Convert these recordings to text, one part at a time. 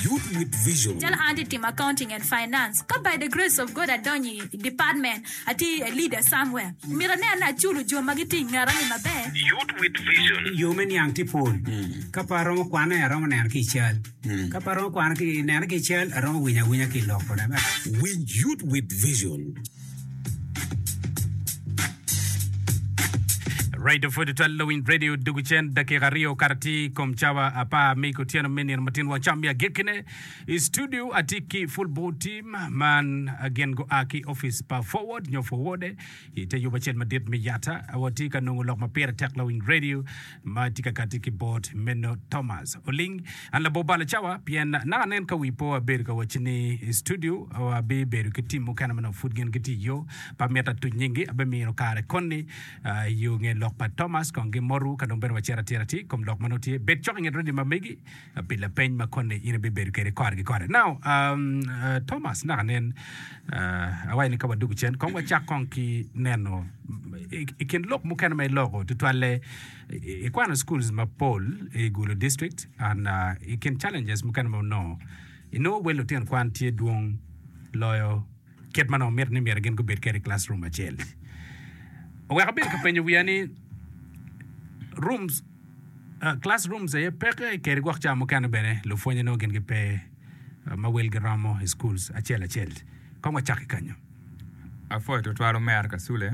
Youth with Vision. Calo an atye timo Accounting and Finance, ka by the grace of God adonyo i department, atye a leader somewhere, myero aneno ni aculo jo ma gitye i ngeta ni maber. Youth with Vision. Yo me niang tye pol. Ka pe aromo kwane, aromo neno ki i cal. Ka pe aromo kwane ki neno ki i cal, aromo winyo awinya ki i lok. Winj Youth with Vision. Radio pwod twal lawiny radio dugu cen dakika aryo kara ti kom cawa apar mi kutyeno me nino matin wang cam mi agekkine i studio ati ki full board team man gin gua ki office pa forward nyo forward i te yubo acel madit me yata awati ka nongo lok ma pire tek lawiny radio ma tye ka kati ki bot meno Thomas oling. An labor balo cawa pien naka anen ka wi po abedo ka wacci ni i studio abi bedo ki team mukene ma nongo pud gin gitye iyo pa mita atuc nyingi abi mino kare koni iyo nge lok pa Thomas kong gi moru ka dong bene wacito atira ti ikom lok manongo tye bed cok inget radio ma megi pi lapeny ma koni in ibibedo kwede kore ki kore. Now, um, uh, Thomas, naka nen, uh, awayo ni ka wadugu cen, kong wacak kong ki neno i, i kin lok mukene ma iloko tutwalle, i- ikwano schools mapol i Gulu district, and uh, i kin challenges mukene ma wunongo, inongo wel lutino kwan tye dwong loyo kit ma nongo miti ni myero gin gubed kwede i classroom acel. Oweko abedo ka penyo wiya ni, rooms Class rooms aye peke keri gwok ca mukene bene lupwonye nongo gin gipe ma wel giromo i schools acel acel. Kong wacak ki kanyo. Apwoyo twatwal Omer Kasule.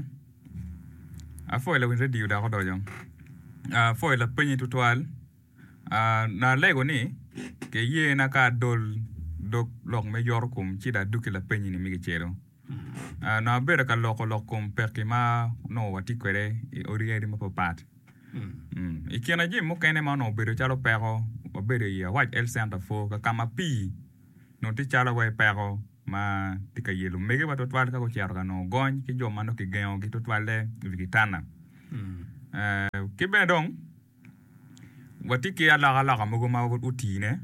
Apwoyo lawiny radio dako doco. Apwoyo lapenyi twatwal. Na lego ni kiyena ka adol dog lok me yorokom ci dong adog ki lapenyi ni me kicelo. Onongo abedo ka loko lok kom pekki ma onongo watye kwede i odi yadi mapatpat. I kine jami mukene ma onongo obedo calo peko, wabedo i Awac Health Center Afo ka ka ma pii onongo tye calo wai peko ma tye ka yelo omegiwa tutwal ka gucito ka nongo gony ki jo ma nongo kigengogi tutwalle i wi kitanda. Ki bene dong. Watye ki alokaloka mogo ma otine.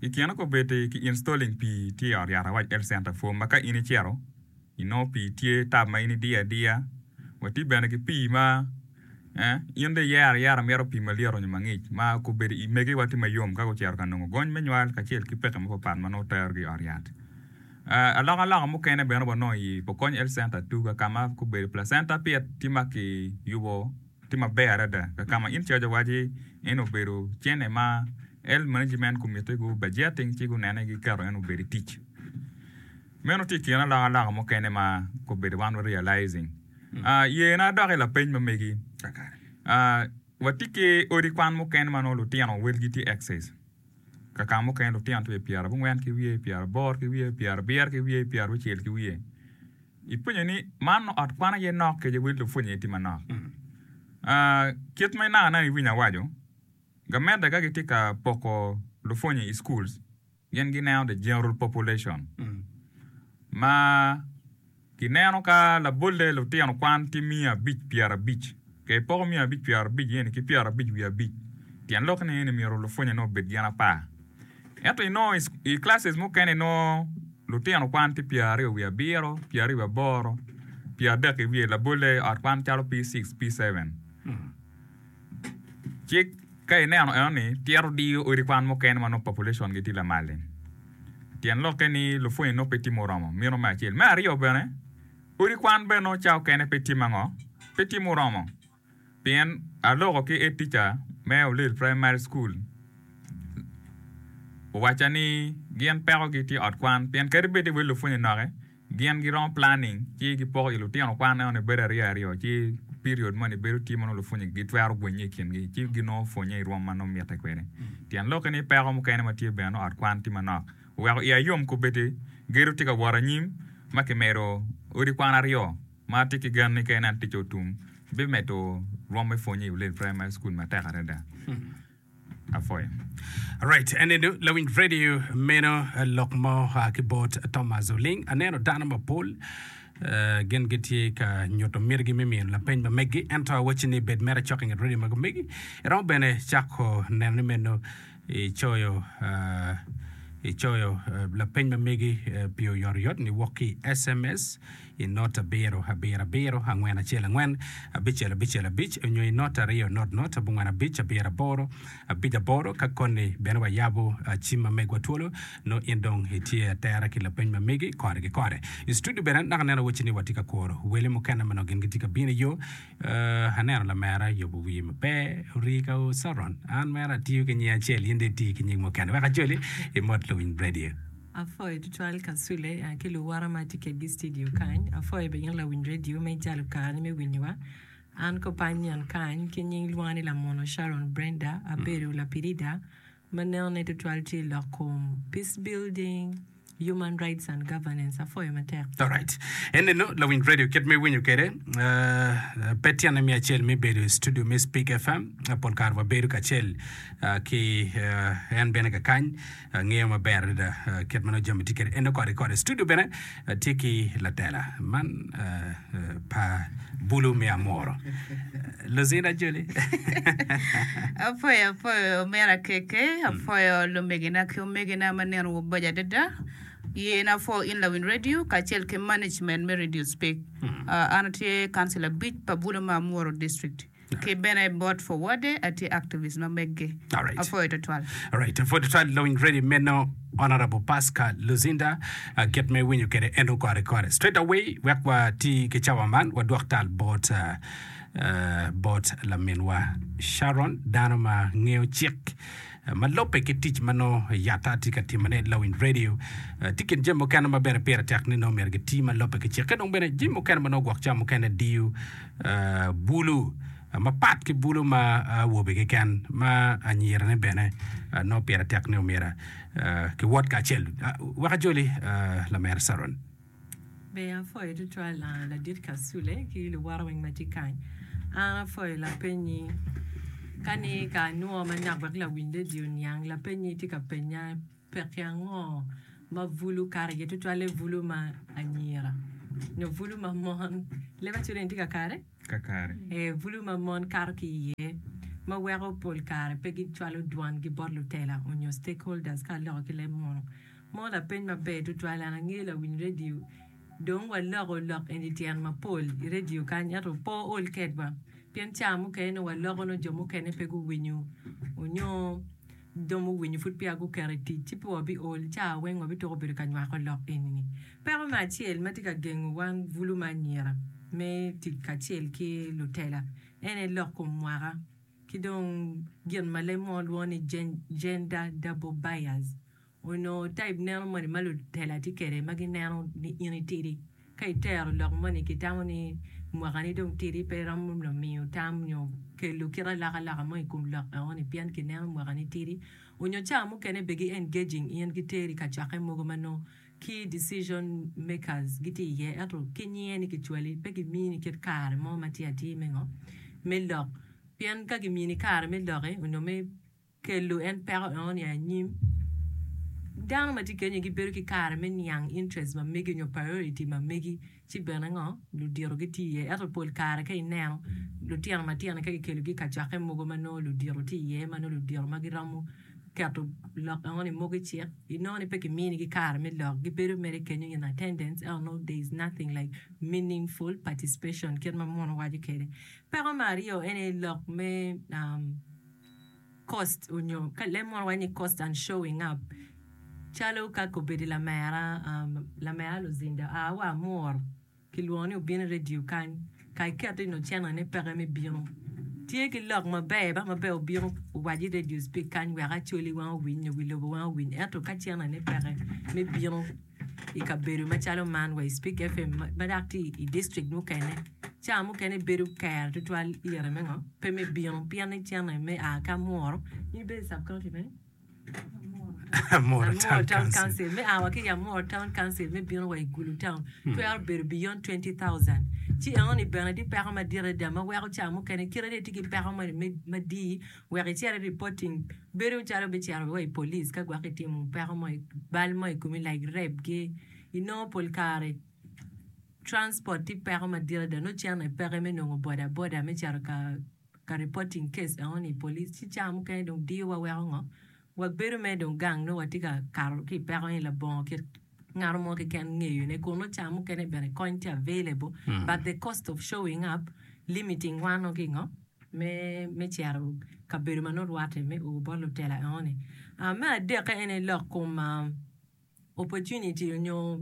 I kine kobeddi ki installing pii tye i ot yat awac health center form ma ka in icito inongo pii tye tap ma in idiyo adiya. Watye bene ki pii ma in dong iyero ayera imito pii malyet onyo mangic ma kobeddi i mege wa tye mayom ka gucito ka nongo gony me nywal kacel ki peke mapat pat ma nongo terogi i ot yat. Alokaloka mukene bene wanongo i Pokony health center Tuga ka ma kobeddi placenta pit tye ma kiyubo. Tye maber adada ka ka ma in cwaco wacci en obedo cene ma el management gumitte gu budgeting ci gunene giketo en obed i tic. Meno tye i kin aloko aloko mukene ma kobedo wan wa realizing. Ah, yena adok i lapeny ma megi. Ah, watye ki odi kwan mukene ma nongo lutino welgi tye excess. Ka ka mukene lutino tye pyerabongwen ki wiye, pyeraboro ki wiye, pyerabiyero ki wiye, pyeraucel ki wiye. Ipwonyo ni man ot kwan aye nok kece wel lupwony aye tye manok. Kit ma inaka neno iwinyo awaco, gamente ka gitye ka poko lupwonyi i schools gin gineno the general population ma gineno ka labolle lutino kwan tye miya abic pyera abic ka ipoko miya abic pyera abic eni ki pyera abic wiye abic tyen lok ni eni myero lupwonyi ni obed gin apar. Ento i nongo i classes mukene nongo lutino kwan ki pyer aryo wiye abiro, pyer aryo wiye aboro, pyer adek i wiye labolle i ot kwan calo P-six, P-seven. Ci ka ineno eno ni tyero diyo odi kwan mukene ma nongo population gi tye lamal-li. Tyen lokke ni lupwonyi nongo pe tye muromo, mino me acel. Me aryo bene, odi kwan bene nongo cawa okene pe tye ma ngo? Pe tye muromo. Pien aloko ki Head Teacher me Olil Primary School owacca ni gin peko gi tye ot kwan pien kadi bed ni wel lupwonye noke gin gi romo planning ci gi poko i lutino kwan eno ni bedo aryo aryo ci period moni bedo tye ma nongo lupwonye gi twero gwenye i kin gi ci gi nongo pwonye i rwom ma nongo mitte kwede. Tyen loki ni peko mukene ma tye bene nongo ot kwan tye manok oweko iya yom kobedi gedo tye ka wot anyim ma ki medo odi kwan aryo ma atye ki gen ni ka en aye aticce otum, bimedo rwom me pwonye i Ulele Primary School matek adada. Apwoyo. Alright, ene du lawiny radio meno eh, lok mo ah, ki bot Thomas Oling. Aneno dano mapol eh, gin gitye ka nyuto mitigi me miyo lapeny ma meggi, ento awacci ni bed mere cok inget radio ma gumegi. Iromo bene cako neno ni meno Icoyo, Icoyo lapeny ma megi pi oyotoyot ni wok ki i sms, i not abiro abiro abiro angwen acel angwen abicel abicel abic onyo i not aryo not not abongwen abic abiro aboro abic aboro. Ka koni bene wayabo cim ma megwa twolo, nongo in dong itye atera ki lapeny ma megi kore ki kore. I studio bene naka aneno wacci ni watye ka kuro wele mukene ma nongo gin gitye ka bino i yo. Ooh, aneno lamera yubo wiye maber, orii ka oo Saron. An mere atiyo ki nying acel, in dong itii ki nying mukene. Wek ajoli, imot Luwiny Radio. Apwoyo tutwal Kasule ki luwora ma tye kedgi i studio kany. Apwoyo bene in Lawiny Radio me ijalo karani me winyowa. An Kopanion kany ki nying lwonga ni Lamono Sharon Brenda, abedo lapilida. Ma nenone tutwal tye i lok kom Peace Building, Human Rights and Governance. Apwoyo matek. Alright. Eninu lawiny radio kit ma iwinyo kwede, pe tyene me acel me bedo i studio me Speak FM. Pol kare wabedo kacel ki en bene kakany, ngeyo maber adada kit ma nongo jami tye kwede. Eninu koti koti i studio bene. Atye ki latela man pa bulu me amuro. Luzin ajoli. Apwoyo apwoyo omera KK, apwoyo lumegina ki omegina ma nino waboco adada. Yen apwo in lawiny radio kacel ki management me radio speak. An atye councilor abic pa bulu me amuro district. Ki bene bot Forward-de, atye activist ma meggi. Alright. Apwoyo twatwal. Alright, apwoyo twatwal lawiny ready meno Honourable Pasca Luzinda, ah, kit ma iwinyo kwede eno kore kore. Straight away wek wati ki cawa man wadwok tal bot ah, ah, bot laminwa Sharon dano ma ngeyo cik. ma lubbe ki tic ma nongo yata tye ka timone. Lawiny redio tye i kin jami mukene ma bene pire tek ni nongo myero giti ma lubbe ki cikke. Dong bene jami mukene ma nongo gwok cam mukene diyo bulu mapat ki bulu ma awobe keken ma anyirane bene nongo pire tek ni myero kiwot kacel. Wek ajoli, Lamer Caron. Ber apwoyo tutwal ladit Kasule ki luwote weng ma tye kany. An apwoyo lapenyi ka ni ka anwo manok wek lawiny redio oniang lapenyi itye ka penya peki ango ma bulu kato iye tutwalle bulu ma anyira nyo bulu ma mon leb aculo ni tye ka kare? Ka kare. Ee bulu ma mon kato ki iye ma weko pol kare pe gicwalo dwangi bot lutela onyo stakeholders ka aloko ki leb munu. Mo lapeny maber tutwal an ange lawiny radio dong waloko lok eni tyen mapol i radio kany ento pe ool kedwa pien ca mukene nongo waloko nongo jo mukene pe guwinyo onyo dong muwinyo pud peya guketo i tic ci pe wa bi ool ca weng wa bi tweko bedo ka nywako lok eni ni. Peko me acel ma tye ka gengo wan bulu me anyira me tic kacel ki lutela en aye lok kom mwaka ki dong gin ma leb mo lwongo ni Gender double bias. Onongo taib neno moni ma lutela tye kwede ma gineno ni in itidi? Ka itero lok moni, kitamo ni mwakani dong tidi pe iromo miyo tam nyo kelo kit alokaloka mo i kom lok enoni pien kineno mwakani tidi. Onyo ca mukene bene gi-engaging in, giteri i kacokke mogo ma nongo key decision makers gitye iye ento ki nyinge ni kicwali, pe gimini kit kare mo ma tye atir me ngo? Me lok. Pien ka gimini kare me lok-ki onyo me. Kelu en peko eno niang anyim. Dano matye kenyo gi bedo ki kare me niang interest ma megi onyo priority ma megi ci bene ngo ludito gi tye iye ento pol kare ka ineno lutino matino ni ka ki kelo gi kacokke mogo ma nongo ludito tye iye ma nongo ludito ma gi romo keto lok eno ni mogo icik inongo ni pe ki mini gi kare me lok gi bedo mere kenyo in attendance ento nongo there is nothing like meaningful participation kit ma munu waco kede. Peko me aryo ene lok me cost onyo ka leb mono waco ni cost and showing up calo ka kobedi lamera lamera luzinda a wa amur kilwongo ni obino i radio kany ka iketo ino channel ne peke me bino tye ki lok maber ba maber obino owaco i radio speak kany wek acholi weng owiny nyo wi lobo weng owiny ento ka channel ne peke me bino i kabedo macalo man wa i Spik FM ma dok tye i district mukene, ca mukene bedo kero tutwal lyeto me ngo pe me bino pien icene me a ki Amuru in ibedo i sub county me Amuru Town Council, me a wa ki i Amuru Town Council me bino wa i Gulu Town twero bedo beyond twenty thousand. Ci eno ni bene tye peko madit adada ma weko ca mukene kite ni itye ki peko moni me madii Wek icer i reporting, bedo calo bicero wa i police ka gwok itimo peko mo, bal mo i komi like rape gi, inongo pol kare transport tye peko madit adada nongo cene peke me nongo boda boda me cito ka reporting case eno ni i police ci cawa mukene dong diyo wa weko ngo Wabedo mere dong gang nongo watye ka kato ki i peko ni labongo kit ngano mo keken ngeyone kun nongo ca mukene bene kony tye available but the cost of showing up limiting wa nongo ki ngo me me cito kabedo ma nongo rwate me o bot lutela engo ni. Me adekke ene lok kom opportunity nyo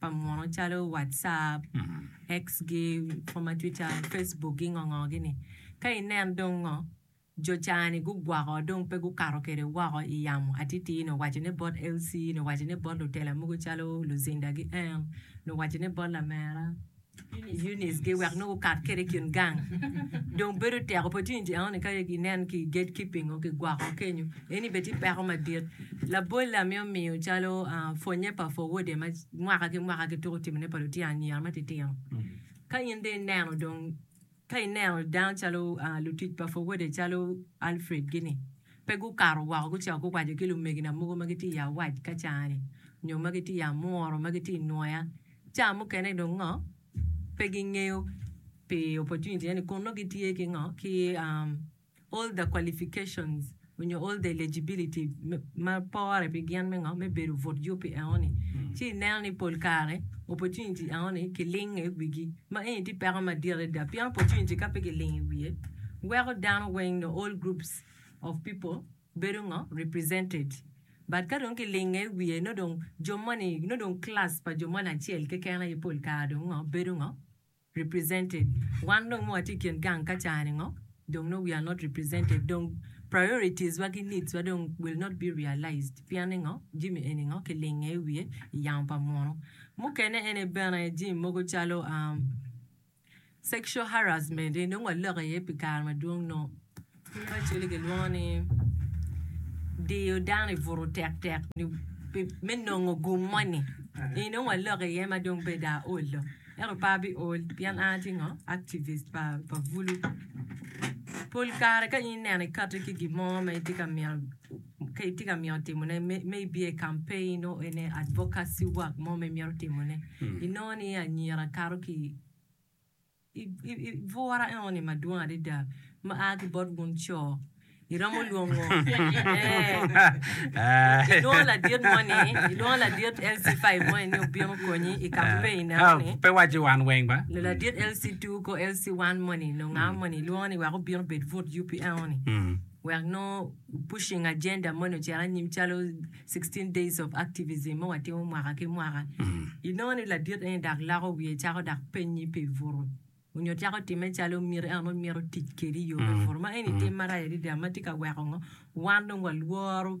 pa muno calo WhatsApp, X gi kom ma Twitter, Facebook gi ngo ngo gi ni. Ka inen dong ngo, jo ca ni gugwako dong pe gukato kede woko i yamo atiti ni owaco ne bot LC ni owaco ne bot lutela mogo calo Luzinda gi Earn ni owaco ne bot lamera. Eunice-gi wek nongo gukat kwede i kin gang. Dong bedo teko pe tye ni jang ni ka inen ki i gatekeeping nongo kigwoko kenyo. Eni bene tye peko madit. Labolle amito miyo calo pwonnye pa Forward-de ma mwaka ki mwaka gituko timone pa lutino anyira matitino. Ka in dong ineno dong Ka ineno dano calo lutic pa Fowode calo Alfred gi ni, pe gukato woko gucito guwaco ki lumegina mogo ma gitye i awac ka caa-ni nyo ma gitye i amworo ma gitye i nwoya caa mukene dong ngo pe gingeyo pi opportunity eni kun nongo gitye ki ngo ki all the qualifications onyo all the eligibility ma pore pi gin me ngo me bedo but yupi enoni ci ineno ni pol kare opportunity enoni ki lingo i wigi ma eni tye peko madit adada pien opportunity ka pe ki lingo i wiye weko dano weng nyo all groups of people bedo ngo represented but ka dong ki lingo i wiye nongo dong jo moni nongo dong class pa jo moni acel keken aye pol kare dong ngo bedo ngo represented wan dong ma watye ikin gang ka caa ni ngo dong nongo we are not represented dong priorities wa ki needs wa dong will not be realized pien ni ngo jimi eni ngo ki linge iwiye iyamo pa munu mukene ene bene jimi mogo calo sexual harassment eni dong wa lok iye pi kare madwong nongo Ki macoli gilwongo ni diyo dano i butu tektek me nongo gum moni eni dong waloke iye ma dong beda aol do ento pe abi ol pien an atye ngo activist pa bulu pol kare ka in ineno ikati ki gin mo ma itye ka mino ka itye ka mino timone me ibiyo i campaign nongo ene advocacy work mo ma imito timone inongo ni anyira kato ki Bwura eno-ni madwong adada ma a ki bot wun co, iromo lwongo ilwongo ladit moni, ilwongo ladit LC5 moni ni obin okonyi i ka mubedo ineno-ni. Pe iwacci wan weng ba. Ladit LC2 ko LC1 moni nyo nga moni ilwongo ni wek obin obed but yupi eno-ni. wek nongo pushing agenda moni ocit anyim calo 16 days of activism ma watimo mwaka ki mwaka. Inongo ni ladit eni dak loko wiye cako dak penyi pi buto onyo cako time calo miti en onongo mito tic kedi i yo me buto ma eni tim marac adada ma tye ka weko ngo wan dong walworo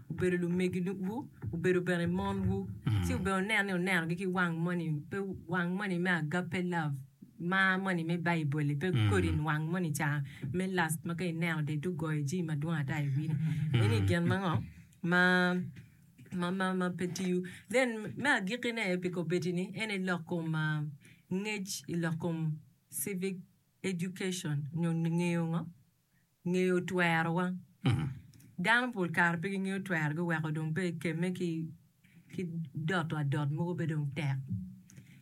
obedo lumegiwu, obedo bene monwu, ci obene wunen ni wunenogi ki wang moni, pe wang moni me agape love, mar moni me Baibul-li, pe kodi wang moni ca me lust ma ka ineno to itye ka goyo jami madwong ata i wiyini. Eni gin ma ngo? ma, ma, ma, ma pe tiyo. Then, me agikkine pi kobeddi-ni, en aye lok kom ngec i lok kom civic education nyo ngeyo ngo? ngeyo twerowa. Dano pol kare pe gingeyo twerogi weko dong pe ekemme ki doto adot mogo pe dong tek.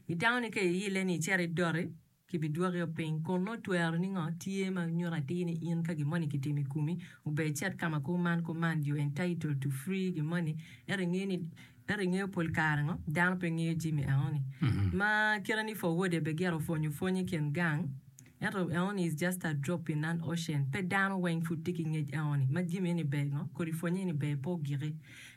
Itamo ni ka iile ni icit idoti kibidwokio piny kun nongo tweroni ngo tye ma nyuto atir ni in ka gin moni kitimo i komi ober icit ka ma kuman kuman you entitled to free gin moni ento ingeyo ni ento ingeyo pol kare ngo dano pe ngeyo jami enoni ma kite ni for wode be gire opwonyo pwony i kin gang. Ento eoni is just a drop in an ocean, pe dano weng pud tye ki ngec eoni, ma jimi eni ber ngo, kodi pwonye eni ber pe ogiki,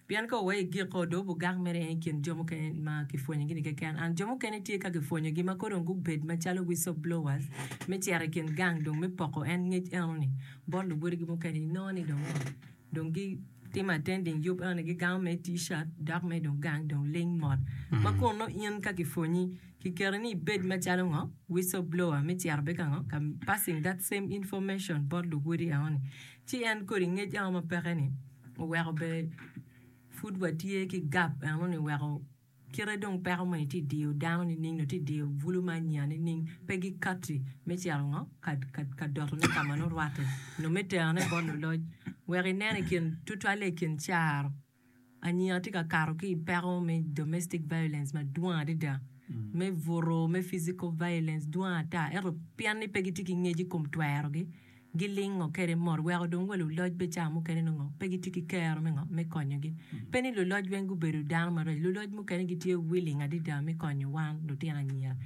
pien ka owaye igiki o dong bugak mere en ikin jo mukene ma kipwonyogi ni keken, and jo mukene tye ka kipwonyogi ma kor dong gubed macalo whistle blowers me cito ikin gang dong me poko en ngec enoni bot luwodigi mukene inongo ni dong ngo, dong gi timo attending yub enoni gigango mere t-shirt dok mere dong gang dong ling mot, ma kono in ka kipwonyi. Kiketo ni ibed macalo ngo? Whistleblower me cito bed ka ngo? Ka passing that same information bot luwodi enoni. Ci en kodi ngec ango ma peke ni oweko be pud wa tye ki gap enoni weko kite dong peko moni ti diyo dano nining nyo ti diyo bulu me anya nining pe gi kati me cito ngo? Ka ka doto ne ka ma nurwate nyo me tero ne bot luloc weko inene kin tutwalle ikin caro. Anya watye ka kato ki i peko me domestic violence madwong adada, me buto, me physical violence dwong ata. Ento pian ni pe gitye ki ngec i kom twerogi, gilingo kwede mot weko dong wa luloc bene ca mukene nongo pe gitye ki kero me ngo? Me konyogi. Pe ni luloc weng gubedo dano maraco, luloc mukene gitye willing adada me konyo wan lutino anyira.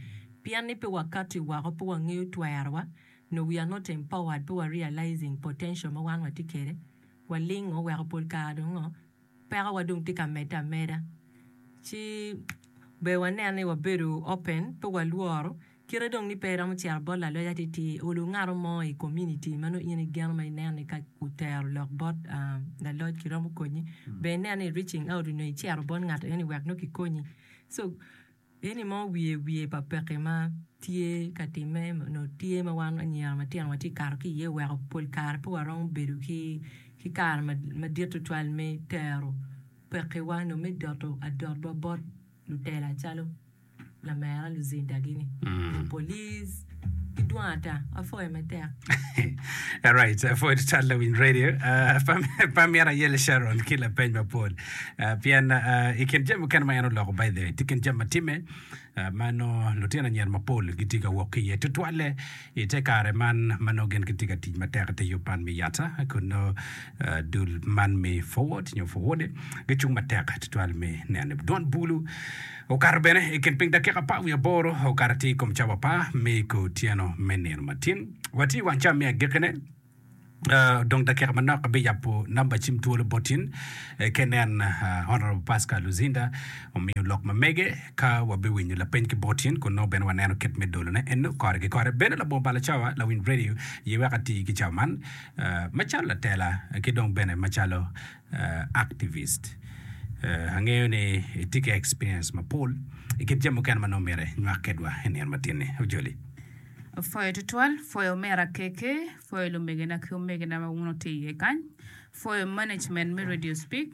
Pian ni pe wakati woko, pe wangeyo twerowa, nyo we are not empowered, pe wa realizing potential ma wan watye kwede. Walingo weko pol kare dong ngo, pekowa dong tye ka medde ameda. Ci ber wanen ni wabedo open, pe walworo. Kite dong ni pe iromo cito bot laloc atittir, olo ngato mo i community ma nongo in igeno ma ineno ni ka otero lok bot laloc kiromo konye, ber inen ni i reaching out nyo icito bot ngat eno ni wek nongo kikonyi. So Pien ni mo wiye wiye pa pekki ma tye ka timme nyo tye ma wan anyira matino watye ka kato ki iye oweko pol kare pe waromo bedo ki kare madit tutwal me tero pekkiwa nyo me doto adotwa bot lutela calo lamera Luzinda gini, nyo polis. Idwong ata, apwoyo matek. Alright, uh, for the Toddler Win Radio, uh, Pam- Pamela Yele Sharon ki lapeny mapol. Uh, pien uh, i kin jami mukene ma en oloko by the way, tye kin jami ma timme uh, ma nongo lutino anyira mapol gitye ka wok ki iye tutwalle i te kare man ma nongo gin gitye ka tic matek i te yub man me yata kun nongo uh, dul man me forward nyo forward gicung matek tutwal me neno dwon bulu Okato bene i kin piny dakika apar wiye aboro, okato atir i kom cawa apar me i kor otyeno me nino matin. Watye i wang cawa me agekkine, odong dakika manok abiyabo namba cim twolo bot in ki inen. Honorable Pascal Luzinda omiyo lok ma mege ka wabewinyo lapeny ki bot in kun nongo bene waneno kit me dolone eno kore ki kore. Bene labongo balo cawa lawiny radio ye wek ati ki cawa man macalo latela ki dong bene macalo activist. Angeyo ni itye ki experience mapol i kit jami mukene ma nongo myero inywak kedwa i nino matinni. Ojoli. Pwoyo tutwal, pwoyo omera KK, pwoyo lumegena ki omegena ma wun wutye iye kany, pwoyo management me Radio Speak,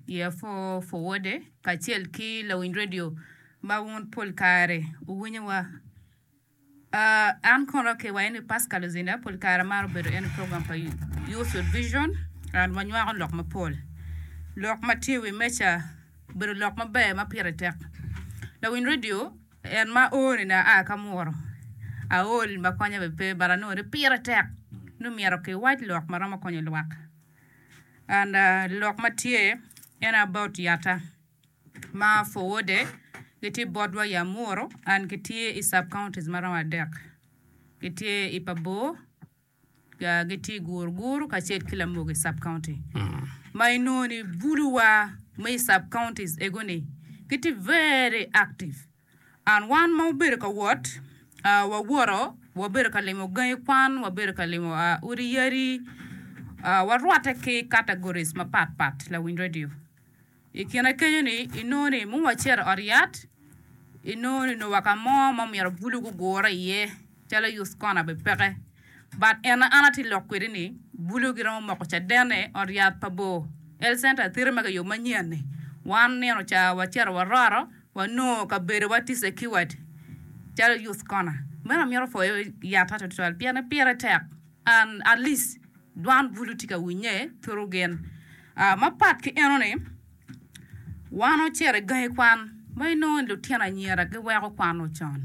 Year Four Forward-de kacel ki lawiny radio ma wun pol kare wuwinyowa. An kono ki wayo ni Pascal Luzinda pol kare amaro bedo en i program pa Youth with Vision and wanywako lok mapol. Lok ma tye i wi meja obedo lok maber ma pire tek. Lawiny redio en ma ooni ni aa ki amuru, aol ma konya bene pe but anongo ni pire tek ni myero kiwac lok ma romo konyo lwak and lok ma tye en about yatta. ma Fowode gitye botwa i Amuru and gitye i sub counties ma romo adek gitye i Pabor, gitye i Guruguru kacel ki Lamogi sub county ma inongo ni buluwa ma i sub counties egoni gitye very active and wan ma wabedo ka wot wawoto wabedo ka limo gangi kwan, wabedo ka limo odi yadi warwote ki categories mapat pat Lawiny Radio. I kine kenyo-ni, inongo ni muwa ocito i ot yat, inongo ni nongo wa ka mo ma omyero bulu gugure iye calo i us kona bene peke. But en ma an atye lok kwede ni, bulu giromo moko cadenne ot yat pa bor, health center thiri ma kiyubo manyen-ni. Wan nino ca wacito waroro, wanongo kabedowa tye secured calo i us kona. Meno amito pwoyo yat-ta tutwal pien ni pire tek. An, Alice, dwan bulu tye ka winye turu gen. Mapat ki enoni, wan ocito i gangi kwan ma inongo ni lutino anyira giweko kwano con.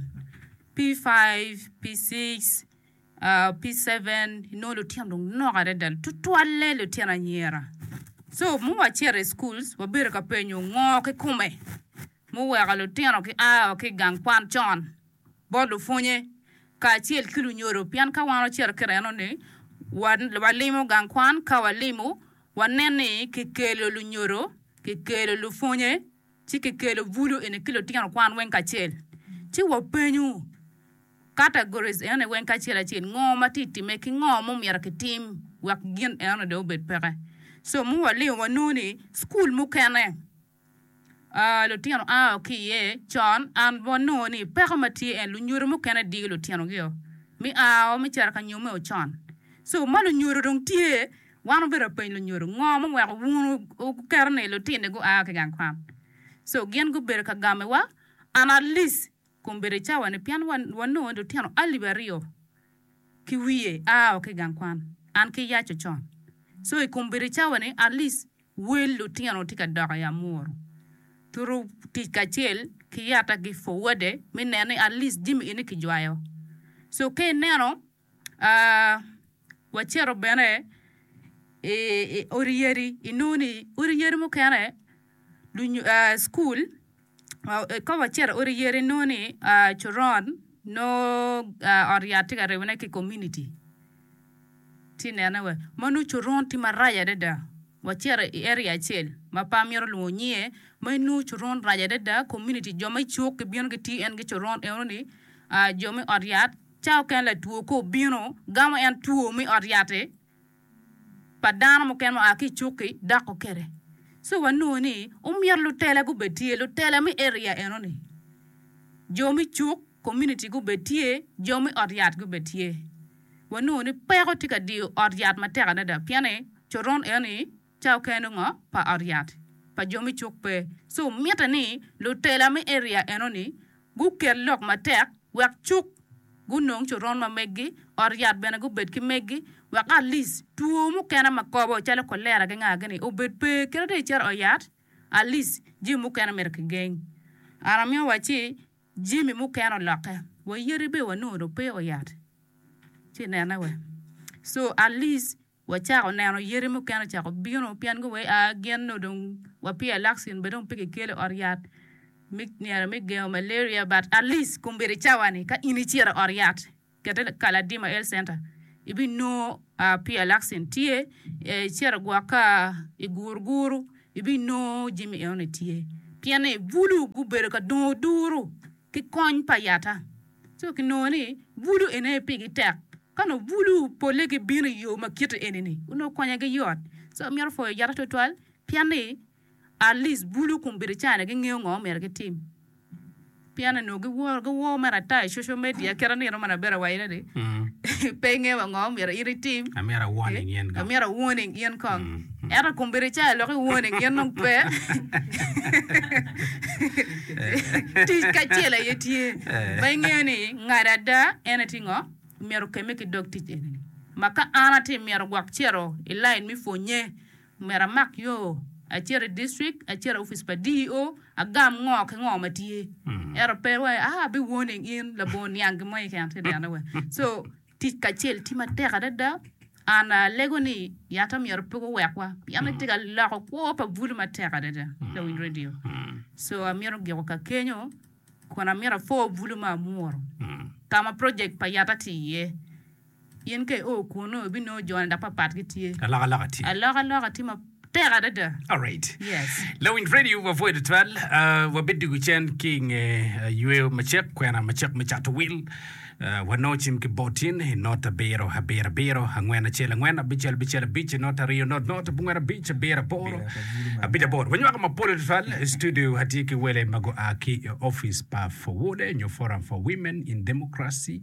P5, P6, P7 inongo lutino dong nok adada tutwalle lutino anyira. Co ma wacito i cukul wabedo ka penyo ngo kikome muweko lutino gia wa ki i gang kwan con. bot lupwonye kacel ki lunyodo. Pien ka wan ocito kit eno-ni, walimo gang kwan, ka walimo, wanen ni kikelo lunyodo, kikelo lupwonye, ci kikelo bulu eni ki lutino kwan weng kacel. Ci wapenyu, categories eno-ni weng kacel acel, ngo ma tye ka timme ki ngo ma omyero kitim wek gin eno-ni dong obed peke? So, ma walimo, wanongo ni cukul mukene Aa, lutino aa o ki iye. Con, an wanongo ni peko ma tye en lunyodo mukene diyo lutinogio me aa o me cito ka nyomme o con. So, ma lunyodo dong tye, wan obedo apeny lunyodo, ngo ma oweko wun wuketo ni lutini gua ki gang kwan? So, gin gubedo ka gamewa, an Alice, kun bedo i cawa-ni, pien wanongo ni lutino alip aryo ki wiye aa o ki i gang kwan, an ki yac ocon. So, i kom bedo i cawa-ni, Alice, Wel lutino tye ka dok i Amuru. Turu tic kacel ki yata ki forwade me neno ni at least jami eni kijwayo. So ka ineno, wacito bene i odi yadi inongo ni odi yadi mukene lunyu cukul. Ikobo acito odi yere inongo ni coron nongo ot yat tye ka ribone ki i komuniti ci inene wa ma nongo coron tye marac adada wacito i eria acel ma pe amito lwongo nyinge ma inongo coron rac adada komuniti jo me cuk gibino gitiyo en ki coron enoni jo me ot yat ca mukene latwo ka obino gamo en two me ot yat-ti. pa dano mukene ma oa ki i cukki dok okete. So wanongo ni omyero lutela gubed tye, lutela me area enoni, jo me cuk, community gubed tye, jo me ot yat gubed tye. Wanongo ni peko tye ka diyo ot yat matek adada pien ni coron enoni ca oken ongo pa ot yat pa jo me cuk pe, ci omitte ni lutela me eria enoni guket lok matek wek cuk gunong coron ma meggi, ot yat bene gubed ki meggi, wek at least two mukene ma kobo calo kolera ki nga gini obed pe kit atir icito ot yat at least jami mukene myero ki geng. An amiyo wa ci jami mukene oloke wa yadi bene wanongo dong pe ot yat ci inene wa so at least. Wacako neno yadi mukene ocako bino pien gua gin nongo dong wapye alakcin bene dong pe kikelo ot yat me nino me gengo malaria but at least kombeddi cawa ni ka in icito i ot yat kete Kaladima Health Centre ibinongo pye alakcin tye, icito gwok ka i Guruguru ibinongo jami eno ni tye pien ni bulu gubedo ka dongo duru ki kony pa yata. Ci kinongo ni bulu eni aye pigi tek. Ka onongo bulu pole gibino i yo ma kite eni-ni, onongo konyogi yot. Ci wamito pwoyo Ojata twatwal pien ni at least bulu kun bedo China gingeyo ngo ma omyero gitim. Pien ni onongo giworo giwor mere ata i social media kit anino ma Nabera owacone ni pe ingeyo wa ngo ma omyero in itim, Amyero a warning in kong. Ento i kom bedo icayo lok i wone gin dong pe. Tic kacel aye tye ma ingeyo ni ngado ada en aye tye ngo? Myero okemme ki dog tic eni ni, Ma ka an atye myero gwok cito i lain me pwonye, myero amak yo acit i district, acit i opic pa DEO, agam ngo ki ngo ma tye. Ento pe wai, ah, abiwone in labongo niang gin mo keken. So. Tic kacel tye matek adada. An alego ni yatta myero pe guwekwa pien etye ka loko kwo pa bulu matek adada lawiny radio. So amito giko ka kenyo kun amito apor bulu ma amwuro ka ma project pa yatta tye iye. In ka io kunnu ibinongo jone dok papat gitye. Alokaloka tye. Tek adada. Alright. Yes. Lawiny Radio wa pwoyo tutwal. Uh, wabed dwogo cen ki nge uh, yweyo macek, kwena macek me cato wil. Uh, wano cim ki botin i not abiro, abiro, abiro, angwen, acel, angwen, abicel, bicel, abic, not aryo, not, not, abungwen, abic, abiro, aboro, abic, aboro. Wanywako mapol tutwal i studio atye ki wele ma gua ki i office pa Fowode nyo Forum for Women in Democracy